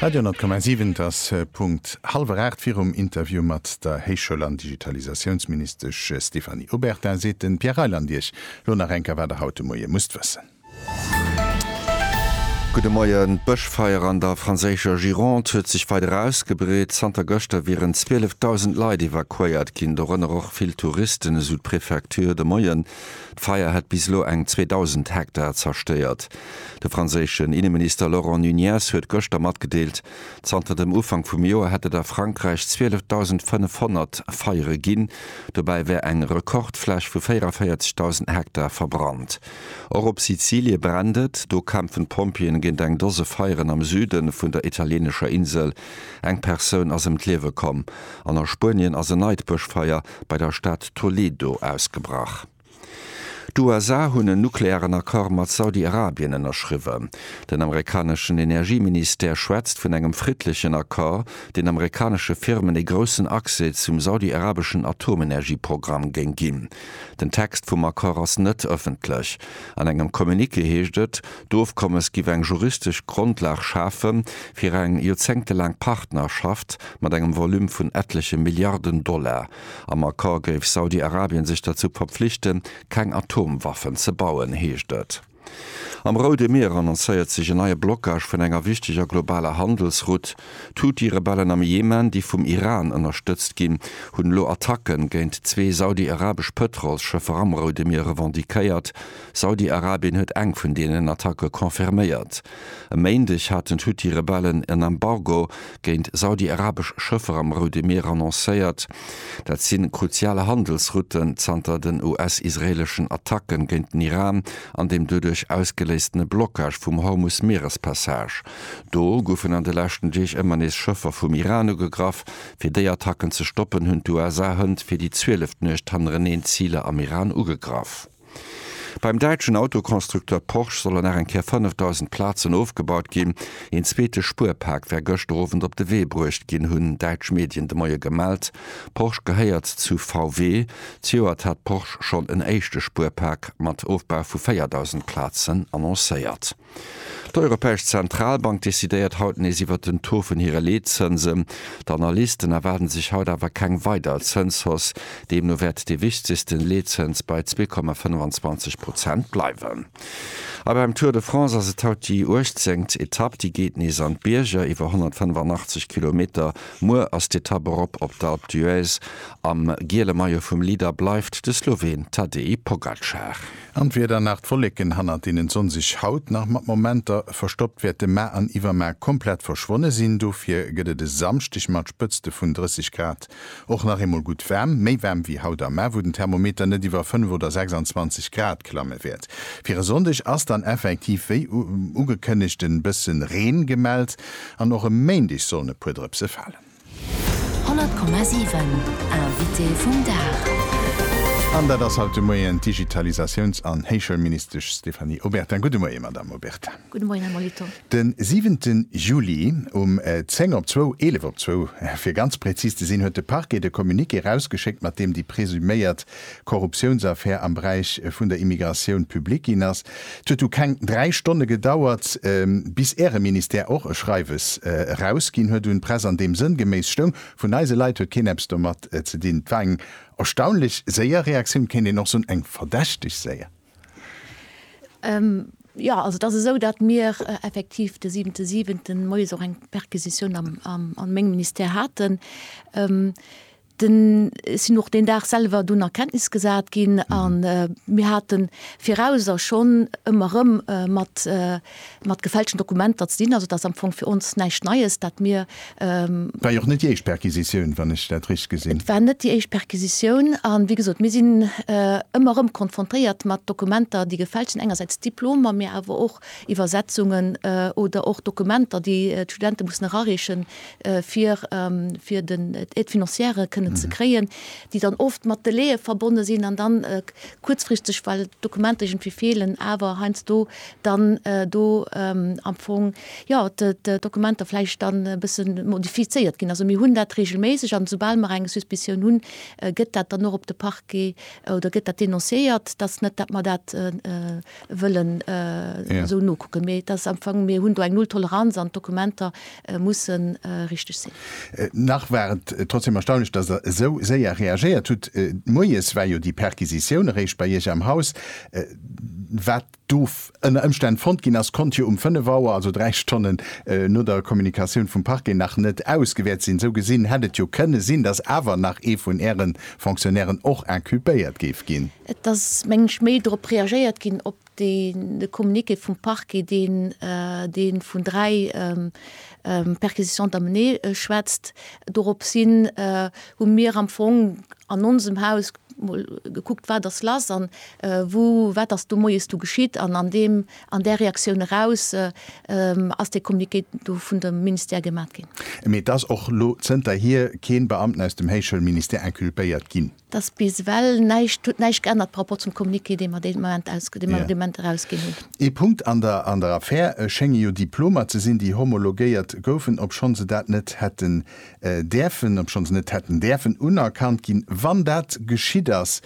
Radio 10,7 Et ass Punkt hallwer aacht. Virum Interview mat der Héichschoul an Digitalisatiounsministesch Stéphanie Obertin seet de Pierre Reyland Iech lo nach enker, wat der haut de Moie musst wëssen. Gudde Moien. D'Bëschfeier an der franséischer Gironde huet sech weider ausgebreet. Zanter gëschter wieren 12.000 Leit evakuéiert ginn, dorënner och vill Touristen, esou d'Prefecture de Moien. D'Feier hätt bis elo eng 2.000 Hektar zerstéiert. De franséischen Inneminister Laurent Nunez huet gëschter matgedeelt, zanter dem Ufank vum Joer hätt et a Frankräich 12.500 Feiere ginn, dobäi wär eng Rekordfläch vu 44.000 Hektar verbrannt. Och op Sizilie brennt et. Do kämpfen d'Pompjeeën géint eng Dose Feieren am Süde vun der italieenescher Insel. Eng Persoun ass ëm d'Liewe komm. An a Spuenien ass en neit Bëschfeier bei der Stad Toledo ausgebrach. D'USA hunn en nuklearen Accord mat Saudi-Arabien ënnerschriwwen. Den amerikaneschen Energieministère schwätzt vun engem friddlechen Accord, deen amerikanesche Firmen ee groussen Accès zum saudi-arabeschen Atomenergieprogramm géing ginn. Den Text vum Accord ass net ëffentlech. An engem Communiqué heescht et, D'Ofkommes giff eng juristesch Grondlag schafe fir eng joerzéngtelaang Partnerschaft mat engem Volume vun ettleche Milliarden Dollar. Am Accord géif Saudi-Arabien sech derzou verpflichten, keng Atomwaffen ze bauen, heescht et. Am Roude Mier annoncéiert sech en neie Blockage vun enger wichteger globaler Handelsroute. D'Huthi-Rebellen am Jemen, déi vum Iran ënnerstëtzt ginn, hunn elo Attacke géint zwee saudi-arabesch Pëtrolsschëffer am Roude Mier revendiquéiert. Saudi-Arabien huet eng vun deenen Attacke confirméiert. E Méindeg haten d'Huthi-Rebellen en Embargo géint saudi-arabesch Schëffer am Roude Mier annoncéiert. Dat si kruzial Handelsrouten zanter den US-israeeleschen Attacken géint den Iran an dem doduerch ausgeléistene Blockage vum Hormus-Mierespassage. Do goufen an de leschten Deeg ëmmer nees Schëffer vum Iran ugegraff. Fir déi Attacken ze stoppen, hunn d'USA hënt fir déi zwieleft Nuecht hannereneen Ziler am Iran ugegraff. Beim däitschen Autoconstructeur Porsche solle nach eng Kéier 5.000 Plazen ofgebaut ginn. Een zweete Spuerpak wär gëschter Owend op de Wee bruecht ginn, hunn däitsch Medien de Moie gemellt. Porsche gehéiert zu VW. Zejoert hat Porsche schonn en éischte Spuerpak mat Ofbau vu 4.000 Plazen annoncéiert. D'Europäesch Zentralbank decidéiert haut nees iwwert den Taux vun hire Leetzënsen. D'Analysten erwaarde sech haut awer keng weider Zënshausse. Deemno wäert dee wichtegsten Leetzëns bei zwee Komma 25 Prozent bleiwen. A beim Tour de France ass et haut déi uechtzéngt Etapp. Déi geet nees an d'Bierger, iwwer 185 Kilometer. Muer ass d'Etapp erop op d'Alpe d'Huez. Am giele Maillot vum Leader bleift de Sloween Tadej Pogacar. An d'Wieder nach d'Wolleken hannert deenen d'Sonn sech haut nach mat Momenter verstoppt wäerte ma an iwwerma komplett verschwonne sinn. Dofir gëtt et e Samschdeg mat Spëtzte vun 30 Grad och nach eemol gutt waarm, méi waarm wéi haut am Mä, wou den Thermometer net iwwer 5 oder 26 Grad klamme wäert. Fir e Sonndeg ass dann effektiv wéi ugekënnegt e bësse Reen gemellt an och e Méindeg sollen e puer Drëpse falen. 100,7 Invité vum Dag. An dat ass haut de Moien d'Digitalisatiouns an Héichschoulministesch Stéphanie Obertin. Gudde Moie, Madamm Obertin. Gudde Moien, Här Molitor. De siwente Juli um zéng op zwou, eelef op zwou fir ganz präzis ze sinn, huet de Parquet de Communiqué erausgeschéckt, mat deem déi presuméiert Korruptiounsaffär am Beräich vun der Immigratioun public ginn ass. Et huet du keng dräi Stonne gedauert, bis Äre Ministère och e Schreiwes erausginn huet un d'Press, an deem sënngeméiss stoung, Vun eise Leit huet keen eppes domat ze dinn. Et war eng erstaunlech séier Reaktioun, kéint een och soen, eng verdächteg séier. Jo, also et ass esou, datt mir effektiv de siwente siwenten moies och eng Perquisitioun a mengem Ministère haten. Den sinn och deen Dag selwer dunn a Kenntnis gesat ginn a mir hate viraus a schonn ëmmer erëm mat mat gefälschten Dokumenter ze dinn. Also et ass am Fong fir ons näischt Neies, dat mir. War jo och net déi éischt Perquisitioun, wann ech dat richteg gesinn. Et war net déi éischt Perquisitioun a wéi gesot, mir sinn ëmmer erëm konfrontéiert mat Dokumenter, déi gefälscht sinn, engersäits Diplomer, mä awer och Iwwersetzungen oder och Dokumenter, déi d'Studente mussen erareechen, fir fir den d'Aide financière kënnen ze kréien, déi dann oft mat Delaie verbonne sinn an dann kuerzfristeg, well d'Dokumenter iergendwéi feelen, awer heiansdo dann do am Fong, jo, d'Dokumenter vläicht dann e bësse modifizéiert ginn. Also mir hunn dat reegelméisseg an esoubal mer eng Suspicioun hunn, gëtt dat dann och op de Parquet oder gëtt dat denonciéiert, dass net, dat mer dat wëllen esou nokucken. Mee et ass am Fong, mir hunn do eng Nulltoleranz an d'Dokumenter musse richteg sinn. Nach war et trotzdem erstaunlech, dass Der esou séier reagéiert hutt. Moies war jo déi Perquisitioun eréischt bei Iech am Haus. Wat do ënner Ëmstänn fonnt ginn ass, konnt jo um fënnef Auer, also dräi Stonnen no der Kommunikatioun vum Parquet, nach net ausgewäert sinn. Esou gesinn hätt et jo kënne sinn, dass awer nach ee vun Äre Fonctionnairen och inculpéiert géif ginn. Et ass, mengen ech, méi drop reagéiert ginn, op de Communiqué vum Parquet, deen dee vun dräi Perquisitions d'amener schwätzt. Dorops hin hu mir am Fong an onsem Haus mol gekuckt, wat ass lass an wou, wat ass do moies du geschitt. An an deem, an där Reaktioun eraus ass dee Communiqué do vun dem Ministère gemat ginn. Mee et ass och lo zënterhier kee Beamten aus dem Héichschoulministère inculpéiert ginn. dass bis ewell näischt huet näischt geännert par rapport zum Communiqué, dee mer deen Moment aus, dee mer dee Moment erausginn hunn. Ee Punkt an der an der Affär schénge jo Diplomer ze sinn, déi homologéiert goufen, obschonn se dat net hätten däerfen, obschonn se net hätten däerfen unerkannt ginn, wann dat geschitt ass.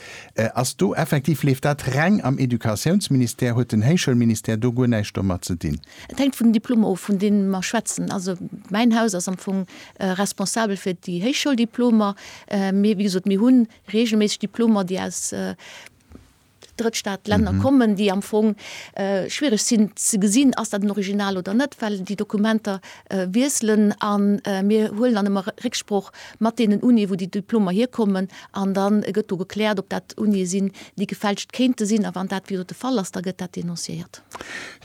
Ass do effektiv, leeft dat reng am Educatiounsministère? Huet den Héichschoulministère do guer näischt domat ze dinn? Et hänkt vun den Diplomer of, vun deene mer schwätzen. Also mäin Haus ass am Fong responsabel fir déi Héichschouldiplomer. Mee wéi gesot, mir hu reegelméisseg Diplomer, déi aus Drëttstaatlänner kommen, déi am Fong schwiereg sinn ze gesinn, ass dat en Original oder net, well déi Dokumenter wiesselen. A mir huelen dann ëmmer Récksproch mat deenen Unie, wou déi Diplomer hierkommen, an da gëtt do gekläert, ob dat Unië sinn, déi gefälscht kéinte sinn. A wann dat wéi gesot de Fall ass, da gëtt dat denonciéiert.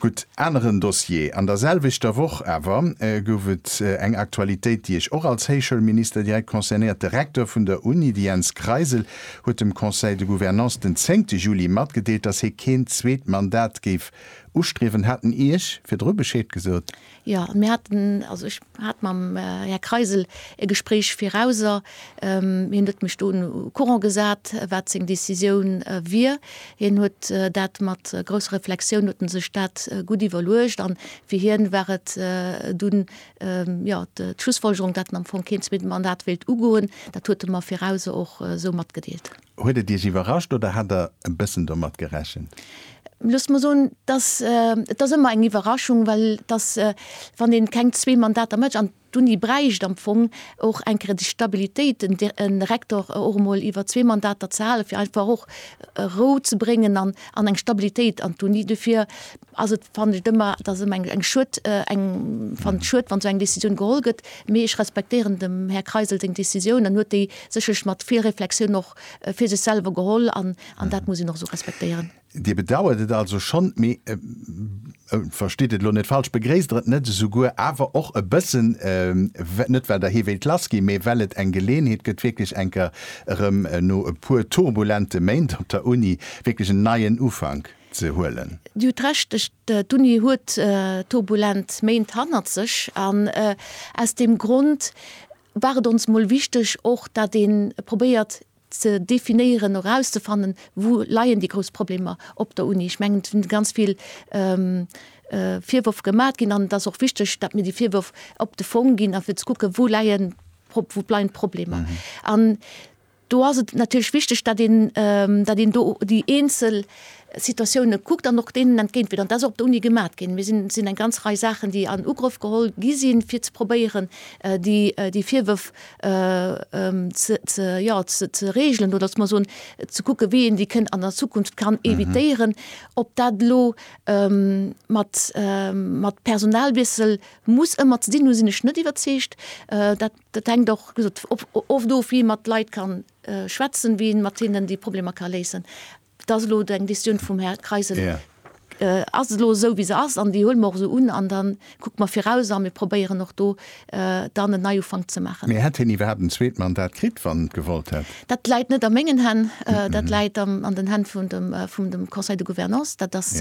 Gutt, aneren Dossier. An der selwechter Woch awer gouf et eng Aktualitéit, déi Iech och als Héichschoulminister direkt concernéiert. De Recteur vun der Uni, de Jens Kreisel, huet dem Conseil de Gouvernance den zéngte Juli matgedeelt, datt hie keen zweet Mandat géif ustriewen. Hat en Iech virdru Bescheed gesot? Jo, mir haten, also ech hat mam Här Kreisel e Gespréich virauser. Hien huet mech do au courant gesat, wat seng Décisioun wier. Hien huet dat mat grousser Reflexioun, huet en sech dat gutt iwwerluecht. An fir hien war et dunn, jo, d'Schlussfolgerung, dat en am Fong keen zweete Mandat wéilt ugoen. Dat huet e mer virauser och esou matgedeelt. Huet et Iech iwwerrascht oder hat Der e bëssen domat gerechent? Loosst mer soen, dass et ass ëmmer eng Iwwerraschung, well dass, wann ee keng zwee Mandater mécht, an d'Uni bräicht am Fong och eng Kéier déi Stabilitéit, e Rektor och emol iwwer zwee Mandater ze halen, fir einfach och Rou ze bréngen an eng Stabilitéit an d'Uni. Dofir ass et fannen ech et ëmmer, et ass ëmmer eng Schued, eng fannen et Schued wann esou eng Décisioun geholl gëtt, mee ech respektéieren dem Här Kreisel seng Décisioun an huet déi sécherlech mat vill Reflexioun och fir sech selwer geholl an an dat muss een och esou respektéieren. Dir bedauert et also schonn, mee verstitt et elo net falsch, begréisst Der et net esouguer awer och e bëssen, net well Der hee wéilt lass ginn, mee well et eng Geleeënheet gëtt wierklech eng Kéier erëm no e puer turbulente Méint op der Uni wierklech en neien Ufank? ze huelen. Dir hutt Recht, d'Uni huet turbulent Méint hannert sech an aus deem Grond war et ons mol wichteg och, dat ee probéiert ze definéieren, erauszefannen, wou leien déi grouss Problemer op der Uni. Ech mengen, et sinn ganz vill Virwërf gemat ginn an et ass och wichteg, dat mir déi Virwërf op de Fong ginn a fir ze kucken, wou leien d'Problemer. Do ass et natierlech wichteg, datt een, datt een do déi eenzel Situatiounen kuckt an och deenen entgéintwiert. An dat ass och op der Uni gemat ginn. Mir sinn, et sinn eng ganz Rei Saachen, déi an Ugrëff geholl gi sinn, fir ze probéieren, déi, déi Virwërf ze, ze, jo, ze, ze regelen oder, loosse mer soen, ze kucken, wéi een déi kënn an der Zukunft kann evitéieren. Ob dat elo mat, mat Personalwiessel muss ëmmer ze dinn hunn, sinn ech net iwwerzeegt. Dat. Dat hänkt och oft of, wéi ee mat Leit ka schwätzen, wéi ee mat hinnen déi Problemer ka léisen. Dat ass elo eng Visioun vum Här Kreisel, ass elo esou, wéi se ass an déi huele mer och esou un. An da kucke mer viraus a mir probéieren och do dann en Neiufank ze maachen. Mee hätt hien iwwerhaapt en zweet Mandat kritt, wann en et gewollt hätt? Dat läit net a mengen Hänn, dat läit an den Hänn vum Conseil de Gouvernance. Dat ass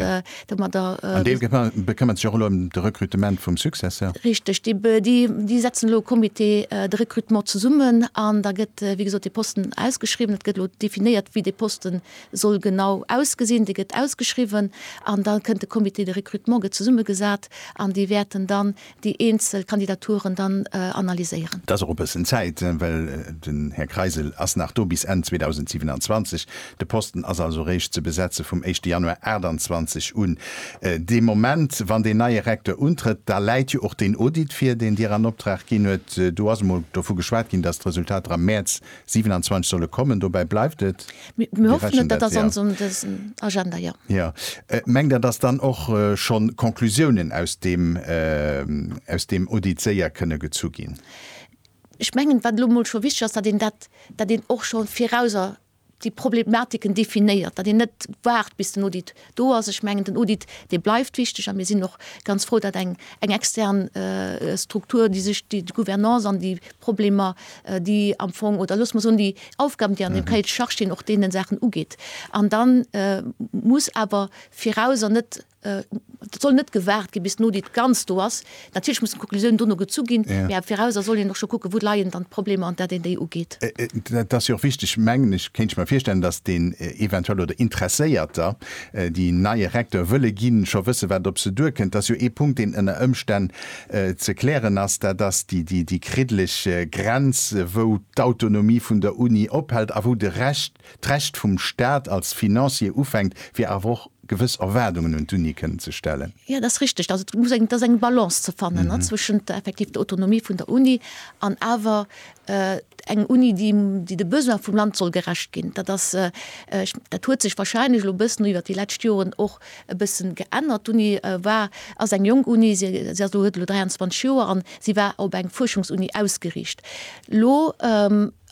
An dee bekëmmert sech och elo ëm de Rekrutement vum Successeur? Richteg. Déi setzen elo e Comité de recrutement zesummen an da gëtt, wéi gesot, dee Posten ausgeschriwwen. Et gëtt elo definéiert, wéi dee Posten soll genau ausgesinn. Dee gëtt ausgeschriwwen an da kënnt de Comité de recrutement, gëtt zesummegesat an déi wäerten dann déi eenzel Kandidaturen dann analyséieren. Et ass och e bëssen Zäit, well den Här Kreisel ass nach do bis Enn 2027. De Posten ass also réischt ze besetze vum éischte Januar 28 un. Dee Moment, wann deen neie Recteur untrëtt, da läit jo och deen Audit vir, deen Dir an Optrag ginn huet. Do ass emol dovu geschwat ginn, dass d'Resultater am Mäerz 27 solle kommen, dobäi bleift et. Mir hoffen et, dat ass an esou dësen Agenda, jo. Jo. Mengt Der, datt dann och schonn Conclusiounen aus deem, aus deem Audit séier kënne gezu ginn? Ech mengen, wat elo mol scho wichteg ass, datt een dat, datt een och scho virauser déi Problematiken definéiert, datt een net waart, bis den Audit Do ass, ech mengen, den Audit, dee bleift wichteg a mir sinn och ganz frou, datt eng extern Struktur, déi sech déi Gouvernance an déi Problemer, déi am Fong, oder loosse mer soen, déi Aufgaben, déi an deem Cahier de charges stinn, och deenen Saachen ugeet. An da muss awer viraus, an net, et soll net gewaart ginn, bis den Audit ganz do ass, Natierlech mussen d'Konklusiounen dono gezu ginn, mä am Viraus a soll een och scho kucken, wou leien dann d'Problemer an dat een déi ugeet. Dat ass jo och wichteg, mengen ech, kéint ech mer virstellen, datt deen eventuell oder Interesséierter, déi en neie Recteur wëlle ginn, scho wësse wat op se duerkënnt. Dat ass jo ee Punkt, deen ënner Ëmstänn ze klären ass, dat ass déi kriddeleg Grenz, wou d'Autonomie vun der Uni ophält a wou de Recht, d'Recht vum Staat als Financier ufänkt, fir awer och gewëss Erwaardungen un d'Unie kënnen ze stellen. Jo, dat ass richteg, dass et muss eng, et ass eng Balance ze fannen zwëschent effektiv der Autonomie vun der Uni an awer eng Uni, déi, déi de Besoine vum Land soll gerecht ginn. Dat ass, dat huet sech wahrscheinlech elo e bëssen iwwert déi lescht Joren och e bëssen geännert. D'Uni war, ass eng jonk Uni, se, se ass elo, huet elo 23 Joer an si war op eng Fuerschungsuni ausgeriicht. Elo.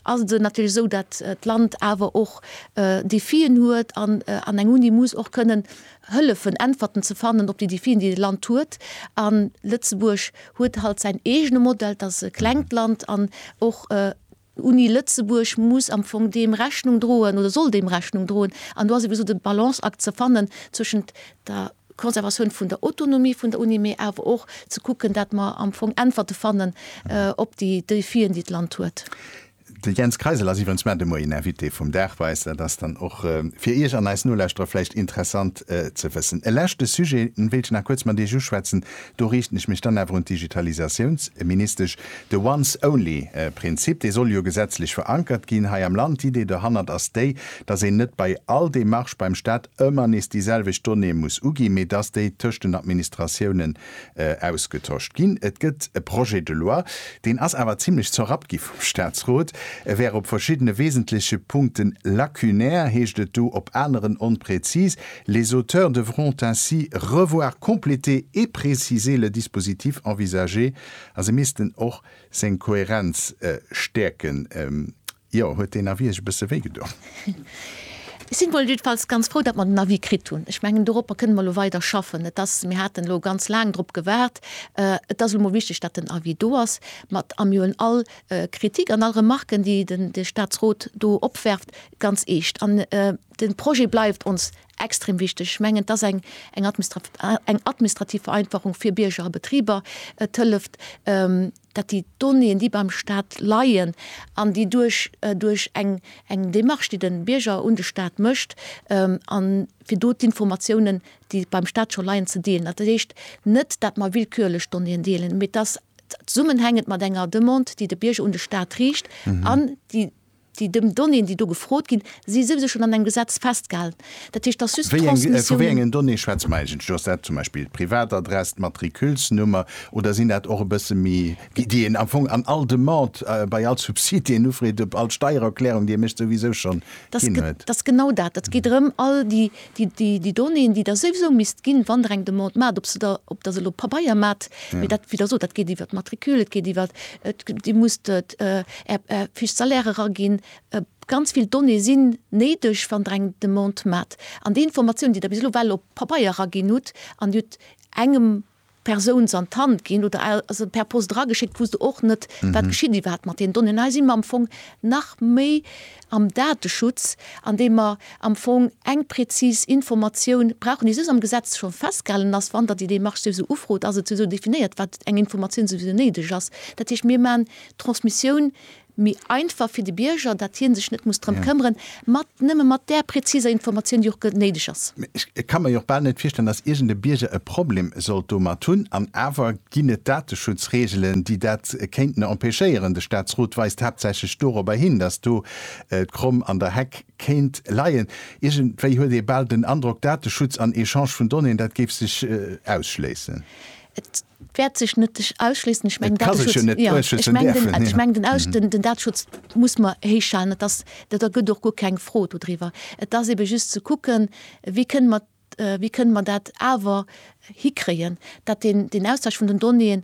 ass et natierlech esou, datt d'Land awer och Defien huet an an eng Uni muss och kënnen hëllefen, Äntwerten ze fannen op déi Defien, déi de Land huet. A Lëtzebuerg huet halt säin eegene Modell, et ass e klengt Land an och d'Uni Lëtzebuerg muss am Fong deem Rechnung droen oder soll deem Rechnung droen. An do ass eben esou de Balanceakt ze fannen zwëschent der Conservatioun vun der Autonomie vun der Uni, mee awer och ze kucken, dat mer am Fong Äntwerte fannen op déi Défien, déi d'Land huet. De Jens Kreisel ass iwwerens mar de Moien en Invité vum Dag bei eis. Dat ass dann och fir Iech an eis Nolauschterer vläicht interessant ze wëssen. E leschte Sujet wéilt ech nach kuerz mat Iech uschwätzen. Do riichten ech mech dann awer un d'Digitalisatiounsministesch. De Once Only Prinzip, dee soll jo gesetzlech verankert ginn hei am Land. D'Idee dohannert ass déi, datt een net bei all Demarche beim Staat, ëmmer nees déi selwecht Donnéeë muss uginn, mee dass déi tëscht den Administratiounen ausgetosch ginn. Et gëtt e Projet de loi, deen ass awer zimlech zerrappt gi vum Statsrot, e wär op verschiddene wesentleche Punkte lacunaire, heescht et do, op aneren onpräzis, Les auteurs devront ainsi revoir, compléter et préciser le dispositif envisagé, a se missten och seng Kohärenz stäerken. Jo, huet deen Avis iech e bësse wéi gedon? Ech sinn mol jiddefalls ganz frou, datt mer den Avis kritt hunn. Ech mengen, doropper kënnen mer elo weider schaffen. Et ass, mir haten elo ganz laang drop gewaart. Et ass elo mol wichteg, datt den Avis do ass. Mä et am jo un all Kritik an all Remarquen, déi de Statsrot do opwerft, ganz eescht. An de Projet bleift ons extrem wichteg. Ech mengen, et ass eng administrativ Vereinfachung fir Bierger a Betriber. Et hëlleft. datt déi Donnéeën, déi beim Stat leien an déi duerch duerch eng eng Démarche, déi de Bierger un de Stat mécht, a fir do d'Informatiounen, déi beim Stat scho leien, ze deelen. Dat heescht net, datt mer willkürlech Donnéeën deelen, mee dass zesummenhängend mat enger Demande, déi de Bierger un de Stat riicht an déi Déi Donnéeën, déi do gefrot ginn, si souwisou schonn an engem Gesetz festgehalen. Dat heescht, dass just d'Transmissiounen. Vu wéi engen Donnéeë schwätze mer eigentlech? Ass dat zum Beispill d'Privatadress, d'Matriculsnummer oder sinn dat och e bësse méi, déi een am Fong an all Demande, bei all Subsid, déi een ufreet, op all Steiererklärung, déi ee mécht, souwisou schonn ginn huet? Dat ass genau dat. Et geet drëm, all déi Déi Donnéeën, déi Der souwisou misst ginn, wann Der eng Demande maacht, ob se der, ob Der se elo op Pabeier maacht, mee dat, wéi der sot, dat geet iwwert d'Matricule, et geet iwwert, Dir musst Är Fiche salaire eraginn, ganz vill Donnéeë sinn néideg, wann Der eng Demande maacht. An déi Informatiounen, déi Der bis elo well op Pabeier eraginn hutt, an Dir hutt engem Persouns an d'Hand ginn oder se per Post erageschéckt, wou s de och net, wat geschitt iwwerhaapt mat deenen Donnéeën. Hei si mer am Fong nach méi am Dateschutz, andeem mer am Fong eng präzis Informatioun brauchen, déi soss am Gesetz scho festgehalen ass, wann Der déi Démarche souwisou ufrot, ass et souwisou definéiert, wat eng Informatioun souwisou néideg ass. Dat heescht, mir maachen d'Transmissioun méi einfach fir de Bierger, datt hie sech net muss drëm këmmeren, mat nëmme mat där präziser Informatioun, déi och néideg ass. Ech ka mer jo och bal net virstellen, datt iergend e Bierger e Problem sollt domat hunn. An awer ginn et Dateschutzreegelen, déi dat kéinten empêchéieren. De Statsrot weist haaptsächlech dorobber hin, datt do d'Kromm an der Heck kéint leien. Iergendwéi huet ee bal den Androck, Dateschutz an Echange vun Donnéeën, dat géif sech ausschléissen. wäert sech net sech ausschliessen. Ech mengen, ech mengen den aus den den Dateschutz muss mer héichhalen. Et ass dat da gëtt och guer keng Fro dodriwwer. Et ass ebe just ze kucken, wéi kënne mer wéi kënne mer dat awer hikréien, datt deen deen Austausch vun den Donnéeën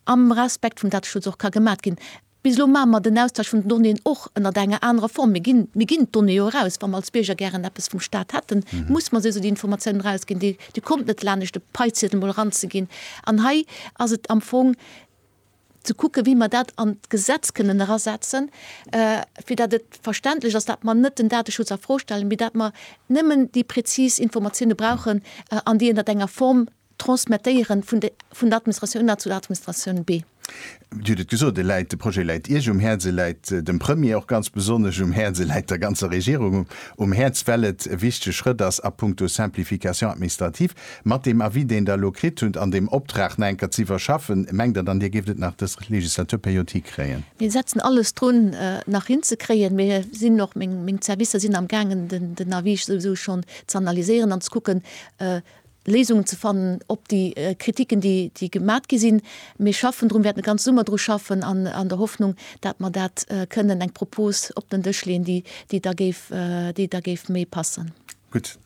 am Respekt vum Dateschutz och ka gemat ginn. Bis elo maache mer den Austausch vun den Donnéeën och ënnert enger anerer Form. Mir ginn, mir ginn d'Donnéeë jo eraus. Wa mer als Bierger gären eppes vum Staat hätten, muss mer se esou déi Informatiounen erausginn. Dir, Dir kommt net lanescht de Paiziedel mol eranzeginn. An hei ass et am Fong ze kucken, wéi mer dat an d'Gesetz kënnen erasetzen, fir datt et verständlech ass, datt mer net den Dateschutz a Fro stellen, mee datt mer nëmmen déi präzis Informatiounen brauchen an déi ënnert enger Form Transmettéieren vun de vun der Administratioun A zu der Administratioun B. Dir hutt et gesot, e läit, de Projet läit Iech um Häerz, e läit dem Premier och ganz besonnesch um Häerz, e läit der ganzer Regierung um Häerz, well et e wichtege Schrëtt ass a puncto Simplification administrative. Mat deem Avis, deen Der elo kritt hutt, an deem Optrag nach eng Kéier ze iwwerschaffen, mengt Der dann, Dir géift et nach dës Legislaturperiod hikréien? Mir setzen alles drun, et nach hinzekréien. Mir sinn och, meng Servicer sinn amgaangen, den Avis souwisou schonn z'analyséieren an ze kucken, Léisungen ze fannen op déi Kritiken, déi gemat gi sinn. Mir schaffen drun, wäerten de ganze Summer dru schaffen an der Hoffnung, dat mer dat kënnen, eng Propos op den Dësch leeën, déi da géif, déi da géif méi passen. Gutt.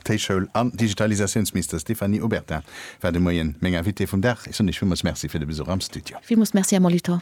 D'Héichschoul an Digitalisatiounsministesch Stéphanie Obertin war de Moien meng Invitée vum Dag. Ech soen Iech villmools Merci fir de Besuch am Studio. Villmools Merci, Här Molitor.